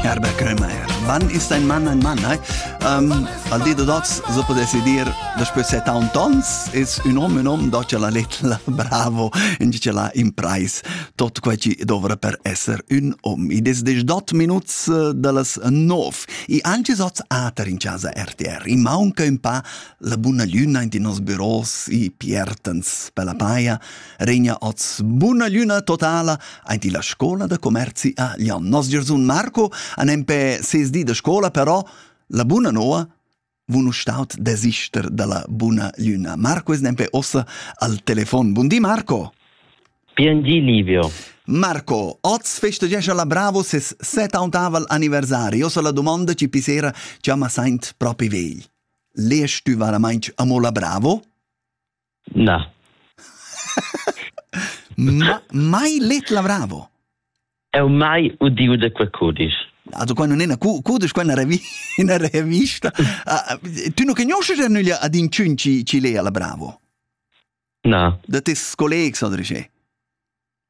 Herbert Grömmeyer. Wann ist ein Mann ein Mann? Ei? Um, al di da tots se potesse dir daspö setaunt ons es ün hom ün hom da ce la litla bravo in ce la impreis tot quai chi dovra per esser ün hom. I des dot minuts eh, da las nov. I anche sots ater in casa RTR. I maunca un pa la buna lüna in di nos büros, i piertens per la paia. regna oz buna lüna totala aint illa scola da commerzi a Glion. Nos Gersun Marco an empè ses di da scola, però la buna noa vunu staut desister dalla buna lüna. Marco es nempe ossa al telefon. Bundi Marco! Biengi Livio. Marco, oz festegescia la Bravo ses settantaval anniversari. Ossa la domanda ci pisera ci ama saint propi vegl. Lees tu varamainch amo la Bravo? Na. Ma mai let la bravo. Eu mai udiu da quel cudisch. Also qua non è una cudisch, qua è una, revi una rivista. Uh, tu non conosci nuglia ad incun ci, ci lea la bravo? No. Da tes collegs oder che?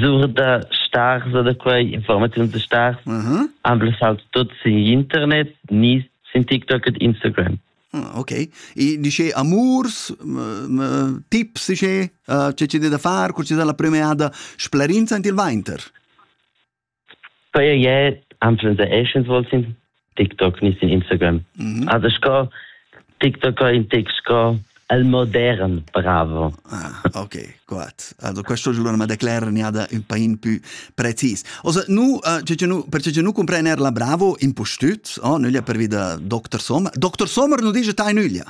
sur da stars oder quei informaziun de stars mm -hmm. amblas halt tot sin internet ni sin tiktok et instagram ah, ok e dice amurs tips dice uh, ce ci de da far cu ci sa la premiada splerenza ant il winter Feier je anflen se eschens wollt TikTok nis in Instagram. Mhm. Also sco TikTok in tic sco el modern bravo. Ah, ok, guarda. Allora, questo giuro mi declaro ne ada un pain più precis. Also, nu, uh, nu, per cece nu comprender la bravo impostut, oh, nuglia per vida Dr. Sommer. Dr. Sommer nu dice tai nuglia.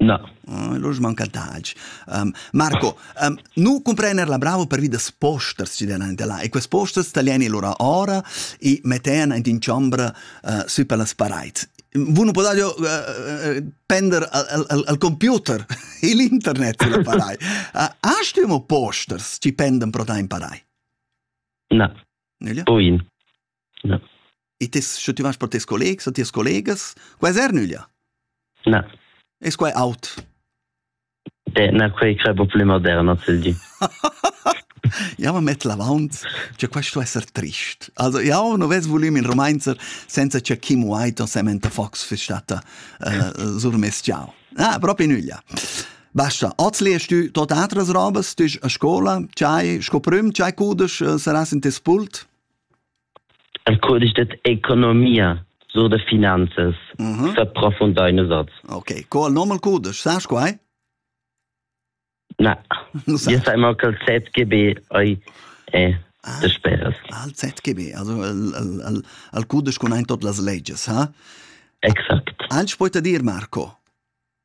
Na. Uh, lur manca talc. Um, Marco, um, nu comprener la bravo per da posters ci dena da là e quest posters taliani lura ora e metten in chambra uh, sü per las pareit. Uno può dargli uh, pender al, al, al computer e l'internet la parei. Uh, Astimo posters ci penden pro ta in parei? No. Nulla? Poi. ja. e tes sche tu vas per tes collegs e tes collegas quai er nüglia na es quai out Eh, na quei cre po plü moderna z'el di. Ja, ma met l'avant, che qua sto esser trist. Also, ja, no ves volim in Romainzer senza che Kim White o Samantha Fox verstata uh, sur mes ciao. Ah, proprio nüglia. Basta, oz lest du tot atras robes, tu a scola, c'hai, sco prüm, c'hai cudes, uh, saras in tes pult? El cudisch dad economia sur da finanzas mm -hmm. s'approfundar in oz. Ok, co al nom al cudisch, sas quai? Na, io sai mo che il ZGB ei è ah, de speras. Al ZGB, also al, al, al cudisch con ein tot las leges, ha? Exakt. Anci puoi dir, Marco?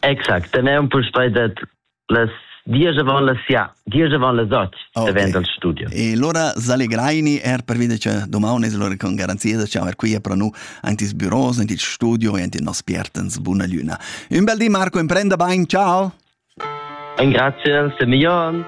Exact, dann è un puspei dat las dies avon las ja, dies avon las otg okay. davent dal studio. E allora s'allegrai er per vide che domani es allora con garanzia da ciao er qui e pro nu antis bureaus, antis studio e antis nos piertens buona luna. Un bel di Marco, imprenda bain, ciao! Un grazie, Simeon.